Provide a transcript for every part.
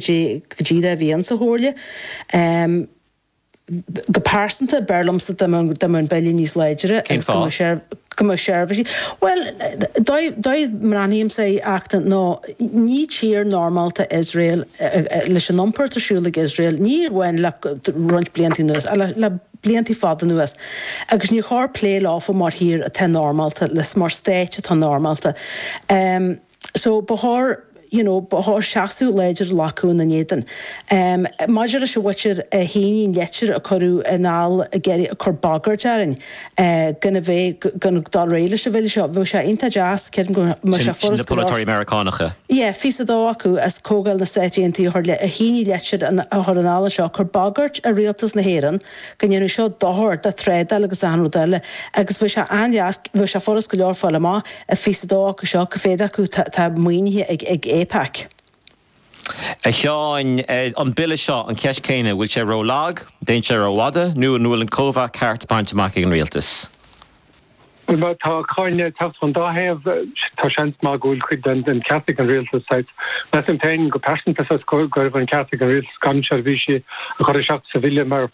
go dtí le bhíonn sa Chomhairle. Go pearsanta, b'fhearr liomsa dá mbeadh an Bille níos láidre. Agus go mbeadh seirbhísí. Bhuel, dóigh a mbreathnaímse é ach nó ní tír normálta Iosrael leis an iompar atá ar siúl ag Iosrael, ní amháin le roinnt blianta anuas ach le blianta fada anuas agus níor chóir plé leofa mar thír atá normálta, mar stáit atá normálta. So ba chóir you know ba chóir seasamh láidir a ghlacadh ina n-éadan. Maidir leis an bhagairt a tháinig, an leitir a cuireadh anall ag cur bagairt orainn gan a bheith ag dul ar aghaidh leis an Bhille seo bheadh sé iontach deas creidim go mbeadh sé Sin na furast go raibh polaiteoirí Meiriceánacha. yeah fiche is a dó acu as Comhdháil na Stáit Aontaithe a shínigh an leitir a chur anall anseo ag cur bagairt ar Rialtas na hÉireann go ndéanann seo dochar do thrádáil agus achan rud eile agus bheadh sé an-deas, bheadh sé furast go leor fáil amach an fiche is a dó acu seo cá mhéad acu atá maoinithe ag AIPAC. A Sheáin, an Bille seo, an cheist chéanna, an bhfuil sé ró-lag, an dtéann sé ró-fhada nó an bhfuil an cóimheá ceart bainte amach ag an Rialtas? Má tá cáineadh ag teacht ón dá thaobh, tá seans maith go bhfuil cuid den cheart ag an rialtas. Measaim féin go pearsanta fós go raibh an ceart ag an rialtas gan seirbhísí a chur isteach sa bhille mar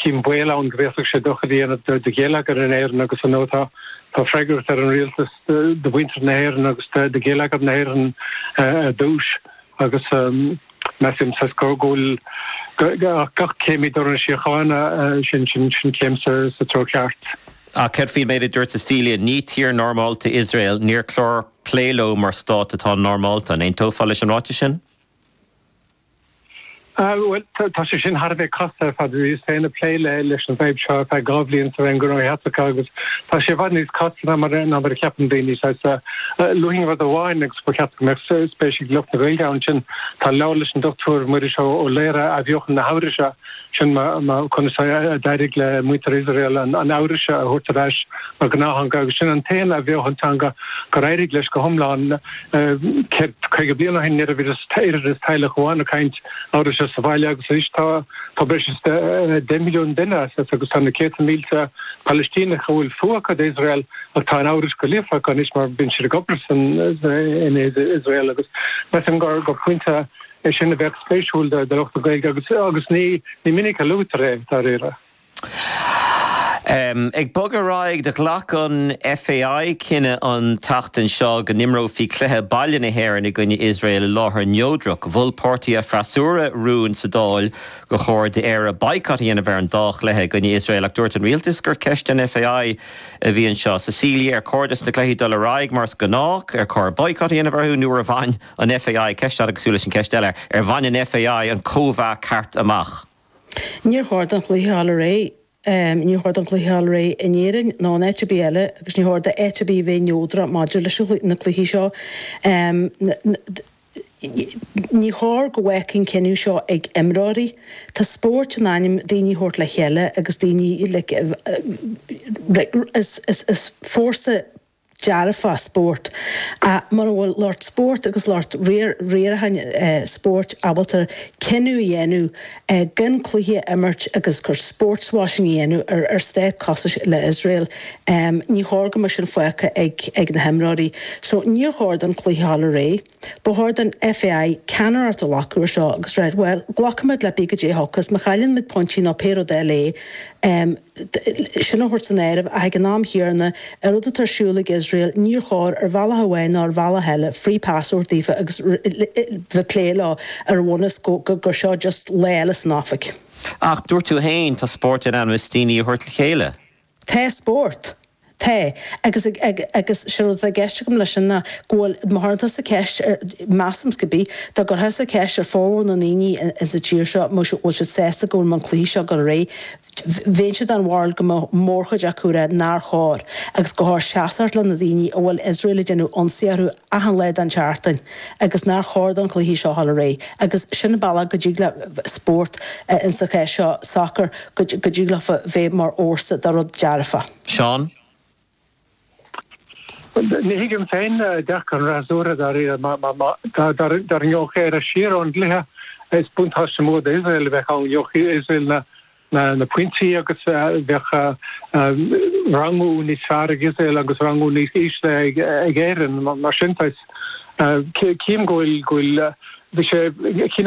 chím baol ann go bhféadfadh sé dochar a dhéanamh do gheilleagar na hÉireann agus ar ndóigh tá freagracht ar an rialtas do mhuintir na hÉireann agus do gheilleagar na hÉireann ar dtús agus Measaimse gur maith é gach céim i dtreo na síochána, sin céim sa treo ceart. Ach céard faoin méid a dúirt Cecilia? Ní tír normálta Iosrael, níor chóir plé leo mar stát atá normálta. An aontófá leis an ráiteas sin? Bhuel, tá sé sin thar a bheith casta ar fad. Bhíos féin ag plé leis an bhfadhb seo ar feadh dhá bhliain sa Roinn Gnóthaí Eachtracha agus tá sé i bhfad níos casta ná mar a cheapann daoine. Luíonn rud amháin Ba cheart go mbeadh spéis ag lucht na Gaeilge ann, sin. Tá leabhar leis an Dr Muiris Ó Laoire, Athbheochan na hEabhraise, sin é conas a d'éirigh le muintir Iosrael an Eabhrais a thabhairt ar ais mar ghnáththeanga, agus sin an t-aon athbheochan teanga gur éirigh leis go hiomlán. Céad caoga bliain ó shin ní raibh fiú is teaghlach amháin ag caint Eabhraise sa bhaile agus anois tá breis is deich milliún duine, agus tá na céadta mílte Palaistíneach a bhfuil fuath acu d'Iosrael, Ach tá an Eabhrais go líofa acu anois mar bíonn siad ag obair in Iosrael agus measaim gur pointe é sin a bheadh spéisiúil do lucht na Gaeilge agus ní minic a luaitear é dáiríre. Ag bogadh ar aghaidh, do ghlac an FAI cinneadh an tseachtain seo go n-imreofaí cluiche baile na hÉireann i gcoinne Iosrael i láthair neodrach. Mhol páirtithe freasúra rún sa Dáil gur chóir d'Éirinn baghcat a dhéanamh ar an dá chluiche i gcoinne Iosrael ach dúirt an rialtas gur ceist don FAI a bhí anseo. Cecilia ar chóir dos na cluichí dul ar aghaidh mar is gnách, ar chóir boycott a dhéanamh orthu nó ar bhain an FAI, ceist fhada cosúil leis an ceist eile, ar bhain an FAI an cóimheá ceart amach? Níor chóir don chluiche a dhul ar aghaidh, níor chóir don chluiche a dhul ar aghaidh in Éirinn ná in áit ar bith eile agus níor chóir do áit ar bith a bheith neodrach maidir leis na cluichí seo. Ní chóir go bhfágfaí an cinneadh seo ag imreoirí. Tá spórt in ainm daoine a thabhairt le chéile agus daoine like is fórsa dearfach spórt ach mura bhfuil lucht spóirt agus lucht riaracháin spóirt ábalta cinneadh a dhéanamh gan cluichí a imirt agus gur sports washing a dhéanamh ar ar stát cosúil le Iosrael. Ní chóir go mbeadh sin fágtha ag ag na himreoirí. So níor chóir don chluiche a dhul ar aghaidh. Ba chóir don FAI ceannaireacht a ghlacadh ar seo agus rá bhuel, glacfaimid le pé caidé a thiocfas má chailleann muid pointí nó pé rud eile é, sin a thabhairt san áireamh, ach ag an am chéanna, an rud atá ar siúl ag Iosrael, níor chóir, ar bhealach amháin ná ar bhealach eile, free pass a thabhairt daofa agus bheith ag plé leo ar bhonn is gur seo just lá eile san oifig. Ach dúirt tú féin, tá spórt in ainm is daoine a thabhairt le chéile. Tá spórt. Tá. Agus, agus sé rud atá i gceist agam leis sin ná go bhfuil, má chuireann tusa ceist ar, measaimse go bí, dá gcuirfeá tusa ceist ar formhór na ndaoine in sa tír seo an bhfuil siad sásta go bhfuil an cluiche seo ag dul ar aghaidh, bheinnse den bharúil go mbeadh mórchuid acu ag rá nár chóir agus gur chóir seasacht le na daoine a bhfuil Iosrael ag déanamh ionsaí orthu achan lá den tseachtain agus nár chóir don chluiche seo a dhul ar aghaidh agus sin an bealach go dtig le spórt ins an chás seo sacar go dtig leofa bheith mar fhórsa do rud dearfa. Seán. Ní thuigim féin dearcadh an fhreasúra dáiríre mar dá ngeobhadh Éire siar ón gcluiche is buntáiste mór d'Iosrael a bheadh ann, gheobhadh Iosrael na na pointí agus bheadh rangú níos fearr ag Iosrael agus rangú níos ísle ag Éirinn mar sin. Cím go bhfuil go bhfuil bhí sé cinn